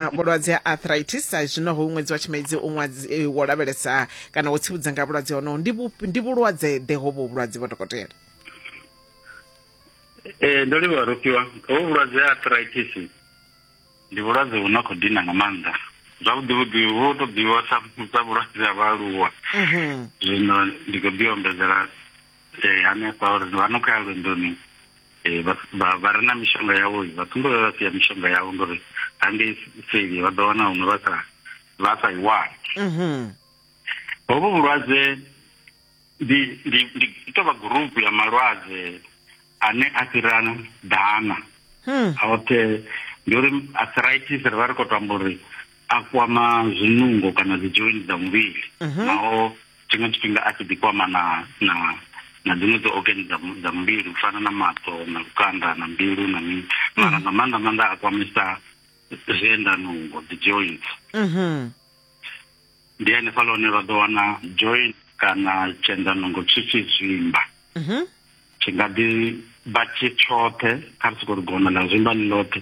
vhulwadze ha arthritis sa zwino ho ṅwedzi wa tshimedzi u ṅwadzi eh, wo lavhelesa kana wo tsivhudza nga vhulwadze honoho ndi vhu- ndi vhulwadze ḓe hovho vhulwadze vho dokotela ee ndo livhuwa rofhiwa hovhu vhulwadze ha arthritis ndi vhulwadze vhu na khou dina nga maanḓa zwavhuḓi vhuḓi vhu to ḓivhiwa sa sa vhulwadze ha vhaaluwa Mhm. zwino ndi khou ḓi ombedzela eh, hanefha uri vha no khou ya lwendoni eh, vha- vha vha re na mishonga yavho vha ṱumbe vha vha sia mishonga yavho ngori hangei seli vha ḓo wana huṅwe vha sa vha sa i wani Mhm. hovhu vhulwadze ndi ndi ndi i tou vha gurupu ya malwadze ane a fhira ḓana Hmm. aote ndi uri arthritis ri vha ri khou to amba uri a kwama zwinungo kana dzi joint dza muvhili mhm. naho tshiṅwe tshifhinga a tshi ḓi kwama na na na dziṅwe dzi organ dza dza muvhili u fana na maṱo na lukanda na mbilu na mini mhm. mara nga maanḓa maanḓa a kwamisa zwienda nungo dzi joint mhm. ndi hanefha lone vha ḓo wana joint kana tshienda nungo tshi tshi zwimba tshi nga ḓi vha tshi tshoṱhe kha ri soko ri gona ḽa zwimba ḽi ḽoṱhe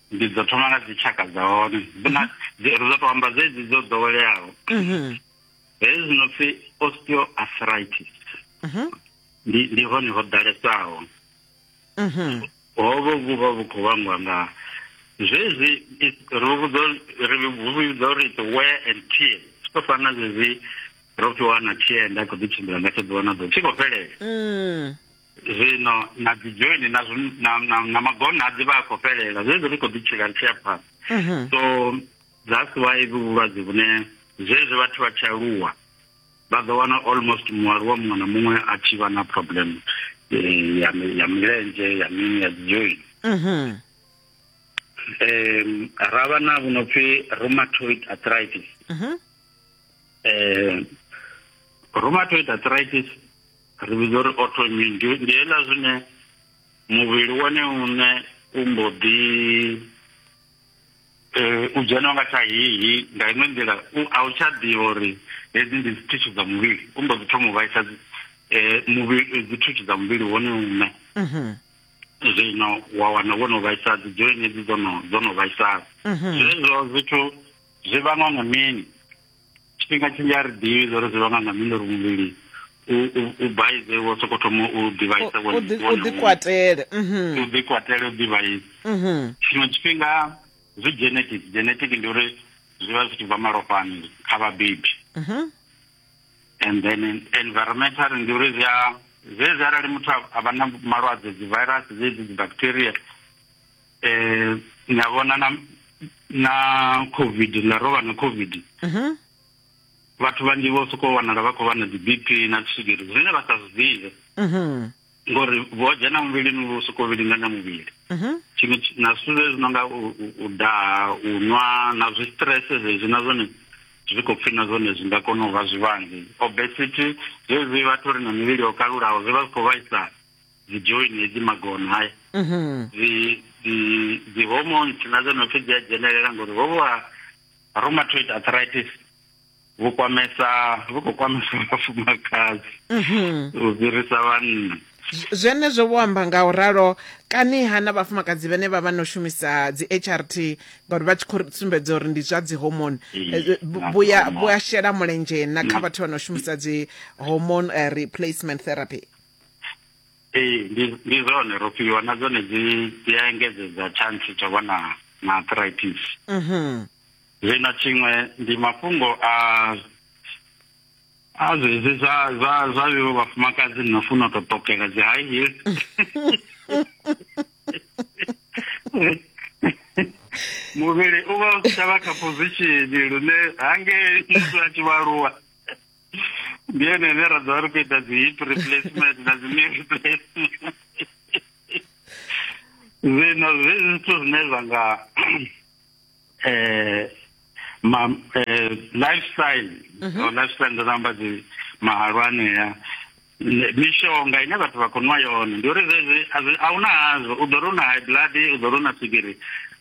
ndi dzo thoma nga dzi tshaka dza hone na ri ḓo to amba dzedzi dzo ḓoweleaho mhm. hezwi zwi no pfi osteoarthritis mhm. ndi ndi hone ho ḓalesaho mhm. hovho vhu vha vhu khou vhangwa nga zwezwi ri vhudza ri vhudza uri it's wear and tear siko fana zwezwi ro fhiwa na tear nda khou ḓi tshimbila nga tsho ḓuvha na ḓuvha tshi khou fhelela mm. zwino na dzi joini na na na, na magona a dzivha a khou fhelela zwezwi ri khou ḓi tshila ri tshi ya phanḓa mhm. so that's why vhu vhulwadze vhune zwezwi vhathu vha tshi aluwa vha ḓo wana almost mualuwa muṅwe na muṅwe a tshi vha na problem eh, ya ya milenzhe ya mini ya dzi joini mhm. um ra vha na vhu no pfi rheumatoid arthritis um rheumatoid arthritis ri vhidza uri autoimmune ndi ndi hela zwine muvhili wone une u mbo ḓi eh, u dzhena nga tsha hihi nga iṅwe nḓila u- a u tsha ḓivha uri hedzi ndi dzithuthu dza muvhili u mbo ḓi thoma u vhaisa dzi- eh, muvhili eh, dzithuthu dza muvhili wone une Mhm. zwino wa wana wo no vhaisa dzi joini edzi dzo no dzo no vhaisala Mhm. zwezwo zwithu zwi vhangwa nga mini tshifhinga tshinzhi a ri ḓivhi zwo ri zwi vhanga nga mini uri muvhili u baize wo soko thoma u ḓivhaisa u ḓikwatele mhm. u ḓikwatele u ḓivhaisa mhm. tshiṅwe tshifhinga zwi genetic genetic ndi uri zwi vha zwi tshi bva malofhani kha vhabebi mhm. and then environmental ndi uri zwi a zwezwi arali muthu a vha na malwadze dzi virus dzedzi dzi bacteria eh na vhona na na covid la rovha na covid mhm vhathu vhanzhi vho sokou wanala vha khou vha na dzi BP na swigiri zwine vha sa zwi ḓivhe mhm ngori vho dzhena muvhilini vho sokou vhilinganya muvhili mhm tshiṅwe tshi- na zwithu zwezwi no nga u- u- u daha u nwa na zwi stress zwezwi na zwone zwi khou pfhi na zwone zwi nga kona u vha zwivhangi obesity zwezwi vhathu ri na mivhili yo kalulaho zwi vha zwi khou vhaisala dzi join hedzi magono haya mhm. dzi hormones na dzo nopfi dzi a dzhenelela ngori ho vha rheumatoid arthritis vhu kwamesa vhu khou kwamesa vhafumakadzi mhm. u fhirisa vhanna zwenezwo vho amba nga u ralo kani ha na vhafumakadzi vhane vha vha no shumisa dzi h r t ngauri vha tshi khou sumbedza uri ndi zwa dzi homone eh, vhuya shela mulenzhe na kha vhathu vha no shumisa dzi homone eh, replacement therapy ee ndi ndi zwone ro fhiwa na dzone dzi dzi a engedzedza chance tsha vha na na arthritis mhm zwino tshiṅwe ndi mafhungo a a zwezwi zwa zwa zwa vho vhafumakadzi no funa u tou ṱokela dzi high heels muvhili u vha u si tsha vha kha position lune hangei muthu a tshi vha aluwa ndi ene ene ra ḓovha ri khou ita dzi hip replacement na dzi knee replacement zwino zwi zwithu zwine zwa nga eh ma eh, lifestyle mm -hmm. lifestyle ndo namba dzi mahalwane ya mishonga ine vhathu vha khou nwa yone ndi uri zwezwi a hu na hazwo u ḓo ri u na high blood u ḓo ri u na swigiri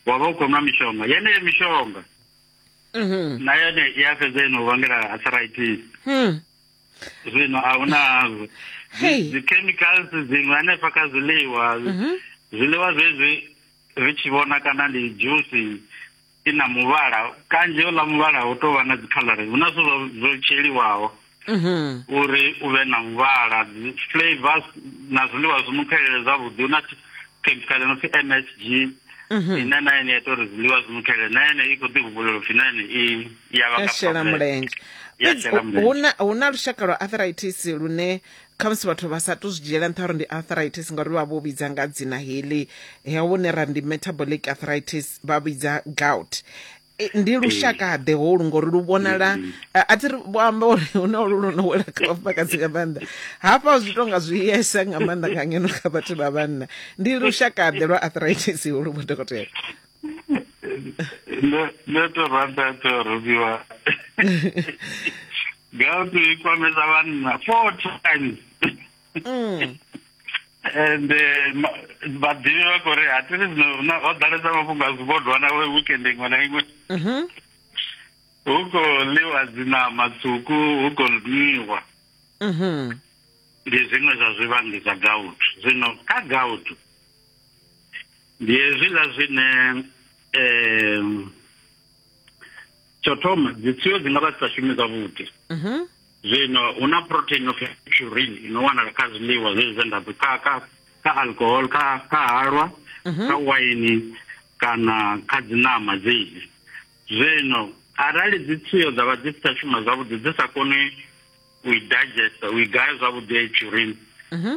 wa vha u khou nwa mishonga yeneyo mishonga na yone i a fhedza ino vhangela arthritis hmm. zwino a hu nazwo dzi-chemicals dziṅwe hanefha kha zwiḽiwa mhm. zwiḽiwa zwezwi ri tshi vhona kana ndi dzhusi i na muvhala kanzhi uḽa muvhala hu tou vha na dzikhaḽari hu na zwithu zwo tsheliwaho mhm. uri u vhe na muvhala flavors na zwiḽiwa zwi mu khelele zwavhuḓi hu na khemikhala no pfi m s g mhm. ine na ene ya ita uri zwiḽiwa zwi mu khelele na ene i khou ḓi humbulela upfi na ene i ya vha shela mulenzhe hu na lushaka lwa arthritis lune khamusi vhathu vha sa to zwi dzhiela nṱha uri ndi arthritis ngauri vha vho vhidza nga dzina heḽi he vhone ra ndi metabolic arthritis vha vhidza gout E, ndi lushakaḓe holu ngori lu vhonala a a thi ri vho amba uri hu na ulu lu no wela kha vhafumakadzi nga maanḓa hafha zwi tonga zwi yesa nga maanḓa nga ngeno kha vhathu vha vhanna ndi lushakaḓe lwa arthritis holu vho dokotela ndo ndo to rata to rubiwa gautu i kwamesa vhanna four times mm. and vhaḓivhi eh, vha khou ri hatiri zwino rina ho ḓalesa mafhungo a zwibodwa na we weekend iṅwe na iṅwe mm-hmm. hu khou ḽiwa dzinama tswuku hu khou nwiwa mm-hmm. ndi zwiṅwe zwa zwivhangi zwa gout zwino kha gout ndi hezwiḽa zwine um tsho thoma dzitsiyo dzi nga vha dzi sa shumi zwavhuḓi mhm. zwino hu na protein of purin i no wanala kha zwiḽiwa zwezwi zwe nda kha kha kha alcohol kha kha halwa mhm. kha waini kana kha dziṋama dzedzi zwino arali dzitsiyo dza vha dzi si tsha shuma zwavhuḓi dzi sa koni u i digesta u i gaya zwavhuḓi ya i purin mhm.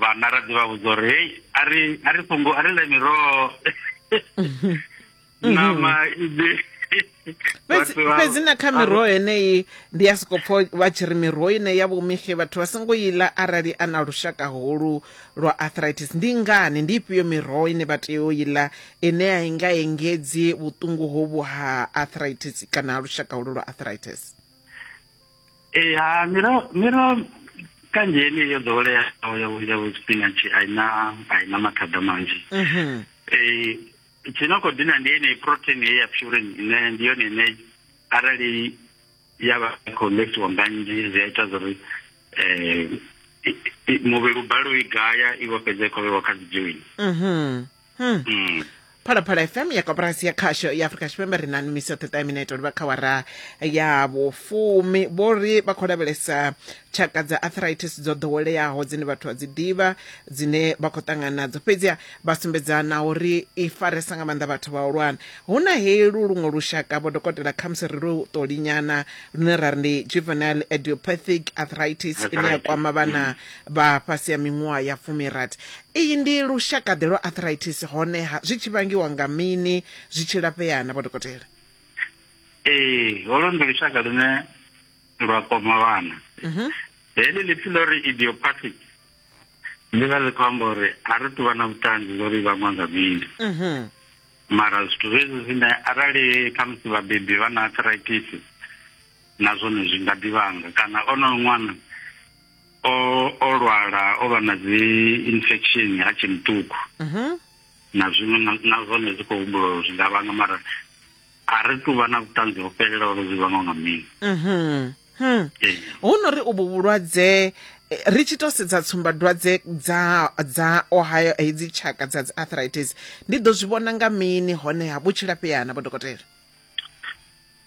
vhana ra ḓi vha vhudza uri hei a ri a ri fhungo a ri ḽe miroho ṋama iḓi fhedzi na kha miroho heneyi ndi ya soko pfo vha tshi ri miroho ine ya vhomixe vhathu vha songo i ḽa arali a na lushaka holu lwa arthritis ndi ngani ndi ifhio miroho ine vha tea u i ḽa ine a i nga engedzi vhuṱungu hovhu ha arthritis kana ha lushaka holu lwa arthritis ee ha miroho miroho kanzhi yeneyi yo ḓoweleaho ya ya spinach a i na a i na mathada manzhi um tshi no khou dina ndi yeneyi protein ye ya purin ine ndi yone ine arali ya vha i khou ḽesiwa nga nnzhi zwi a ita zwa uri um muvhili u balelwe u i gaya i vho fhedza i khou vhewa kha dzi joini Hmm. Mm. phalaphala fm ya koporasi ya khasho ya afurika tshipembe ri na numiso ṱeṱa minete uri vha kha wara ya vhufumi vho ri vha khou lavhelesa tshaka dza arthritis dzo ḓoweleaho dzine vhathu vha dzi ḓivha dzine vha khou ṱangana nadzo fhedziha vha sumbedza na uri i faresa nga maanḓa vhathu vhahulwane hu na helu luṅwe lushaka vho dokotela khamusi ri lu ṱolinyana lune ra ri ndi juvenile idiopathic arthritis ine ya Arthritis, kwama vhana vha fhasi ya miṅwaha ya fumirathi Iyi ndi lushaka-ḓe lwa arthritis, honeha zwi tshi vhangiwa nga mini? Zwi tshi lafhea-na, Vho Dokotela? Ee, holu ndi lushaka lune lwa kwama vhana. Heḽi ḽipfi ḽo ri idiopathic ḽi vha ḽi khou amba uri a ri tu vha na vhuṱanzi zwo ri i vhangwa nga mini. Mara zwithu zwezwi zwine arali khamusi vhabebi vha na arthritis na zwone zwi nga ḓi vhanga kana onoyo ṅwana, o o lwala o vha na dzi infection ha tshe muṱuku mhm. na zwiṅwe na zwone zwi khou humbula uri zwi nga vhanga mara a ri tu vha na vhuṱanzi ho fhelela uri zwi vhangwa nga mini mhm. hmm. hu no ri uvhu vhulwadze eh, ri tshi to sedza tsumbadwadze dza dza ohio hedzi tshaka dza dzi arthritis ndi ḓo zwi vhona nga mini honeha vhutshilafheana vho dokotela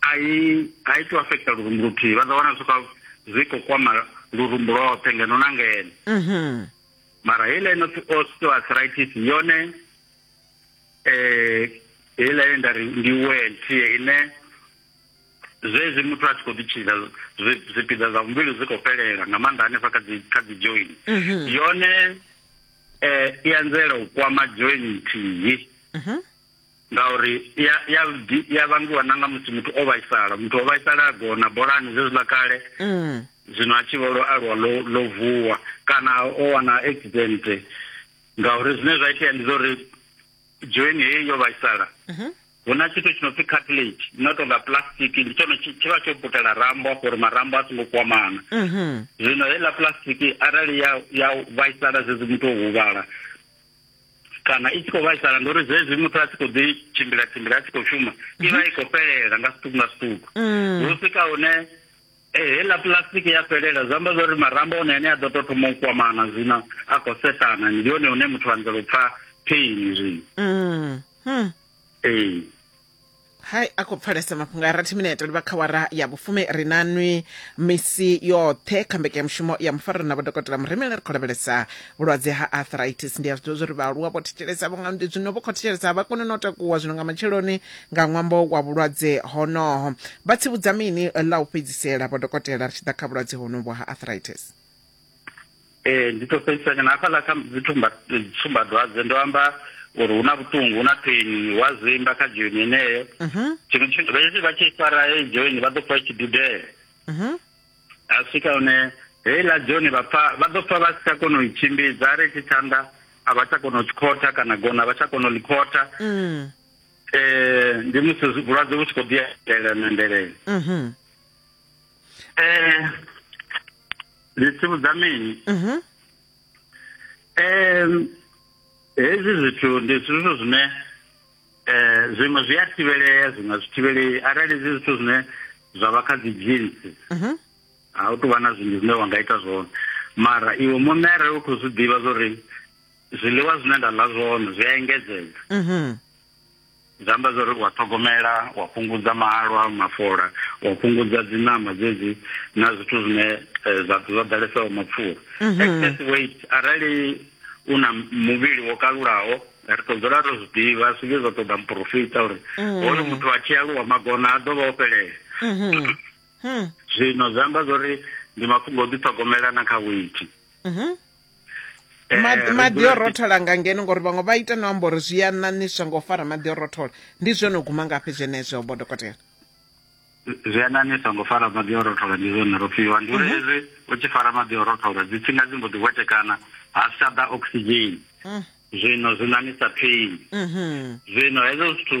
a i a i to affecta lurumbu luthihi vha ḓo wana zwi zwi khou kwama lurumbu lwoṱhe ngeno na ngeno mhm. mara heiḽa ino pfi osteoarthritis yone um heiḽa ye nda ri ndi wentie ine zwezwi muthu a tshi khou ḓitshidza zwipiḓa zwa muvhili zwi khou fhelela nga maanḓa hanefha kha dzi kha dzi join mhm. yone um i anzela u kwama join nthihi mhm. ngauri i ya- i ya di- i ya vhangiwa na nga musi muthu o vhaisala muthu o vhaisala a gona bolani zwezwiḽa kale Mm. zwino a tshi vho lo aluwa lo lo vuwa kana o wana accident ngauri zwine zwa itea ndi zwa uri joini heyi yo vhaisala Mhm. hu na tshithu tshi no pfi cartilage no tou nga plastic ndi tshone tshi tshi vha tsho putela rambo afho uri marambo a songo kwamana Mhm. zwino heiḽa plastic arali ya ya vhaisala zwezwi muthu o huvhala kana i tshi khou vhaisala ndi uri zwezwi muthu a tshi khou ḓi tshimbila tshimbila a tshi khou shuma i vha i khou fhelela nga zwiṱuku nga zwiṱuku mm. hu swika hune eh, heiḽa plastic ya fhelela zwi amba zwauri marambo one ane a ḓo tou thoma u kwamana zwino a khou sethana ndi hone hune muthu anzela u pfa pain zwino mm. hmm. ee hai a khou pfalesa mafhungo a rathi minete livha kha wara ya vhufumi ri na nwi misi yoṱhe kha mbekanyamushumo ya mufariro na vhodokotela muremela ri khou lavhelesa vhulwadze ha arthritis ndi a zwi ḓivha zwa uri vhaaluwa vho thetshelesa vho nga ndi zwino vho khou thetshelesa a vha kone na u takuwa zwino nga matsheloni nga ṅwambo wa vhulwadze honoho vha tsivhudza mini ḽa u fhedzisela vhodokotela ri tshi ḓa kha vhulwadze honovhu ha arthritis ee ndi to fhedzisanya na hafhaḽa kha dzitsumbadwadze ndo amba uri hu na vhuṱungu hu na pheni wa zwimba kha joini yeneyo mhm. tshiṅwe tshithu hezwi vha tshi fara heyi joini vha ḓo pfa itshi dudela mhm. a swika hune heiḽa joini vha pfa vha ḓo pfa vha si tsha kona u i tshimbidza a ri tshi tshanḓa a vha tsha kona u tshikhotha kana gona a vha tsha kona u ḽikhotha um ndi musi vhulwadze vhu tshi khou ḓiela na ndelele mhm. eh ndi tsivhudza mini mhm eh hezwi zwithu ndi zwithu zwine eh zwiṅwe zwi a thivhelea zwiṅwe zwi thivhelei arali zwi zwithu zwine zwa vha kha dzi jeans mhm a u tou vha na zwinzhi zwine wa nga ita zwone mara iwe muṋe arali u khou zwi ḓivha zwa uri zwiḽiwa zwine nda ḽa zwone zwi a engedzedza mhm Zwi amba zwa uri wa ṱhogomela wa fhungudza mahalwa mafola wa fhungudza dzi ṋama dzedzi na zwithu zwine eh, zwa zwa ḓalesaho mapfura mhm. excess weight arali u na muvhili wo kalulaho ri tou dzula ro zwi ḓivha zwi vhe zwa ṱoḓa muporofita uri mhm. hoyo muthu a tshi aluwa magona a ḓovha o fhelela mhm. hmm. zwino zwi amba zwa uri ndi mafhungo o ḓiṱhogomela na kha weight eh, maḓi o rothola nga ngeno ngori vhaṅwe vha ita no amba uri zwi a ṋaṋiswa nga u fara maḓi o rothola ndi zwone u guma ngafhi zwenezwo bo dokotela zwi a ṋaṋiswa nga u fara maḓi o rothola ndi zwone ro fhiwa ndi uri mhm. hezwi u tshi fara maḓi o rothola dzi tsinga dzi mbo ḓi hwetekana ha si tsha ḓa oxygen mm. zwino zwi ṋaṋisa pain mhm. zwino hezwo zwithu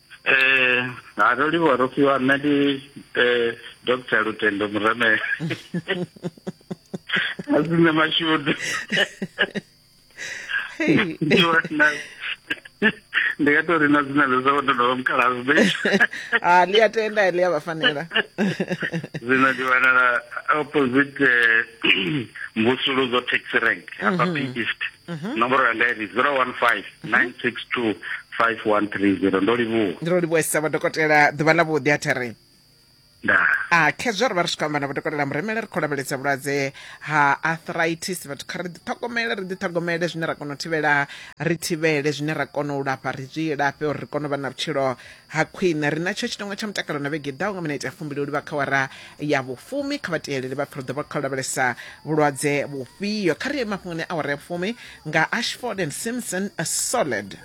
eh ha ro livhuwa ro fhiwa nṋe ndi eh dr lutendo muremela a si nṋe mashudu ndi nga tori na dzina ḽo sa ndo ndovha mukalazi be ha ḽi a tenda ḽi a vha fanela zwino ndi wanala opposite eh, mvusuludzo taxi rank hafha mm -hmm. east Mhm. nomboro yanga iri 015 962 5130 ndo livhuwa ndi ro livhuwesa vadokotela ḓuvha ḽa vhuḓi a thiri nda a khezwo ri vha ri swika amba na vadokotela muremele ri khou lavhelesa vhulwadze ha arthritis vhathu kha ri ḓiṱhogomele ri ḓiṱhogomele zwine ra kona u thivhela ri thivhele zwine ra kona u lafha ri zwi lafhe uri ri kone u vha na vhutshilo ha khwine ri na tsho tshitongwa tsha mutakalo na vhege ḓaho nga minete ya fumbili u livha kha wara ya vhufumi kha vhateeleli vha pfhi ri ḓo vha kha u lavhelesa vhulwadze vhufhio kha ri ye mafhungoni awara ya fumi nga ashford and simpson a solid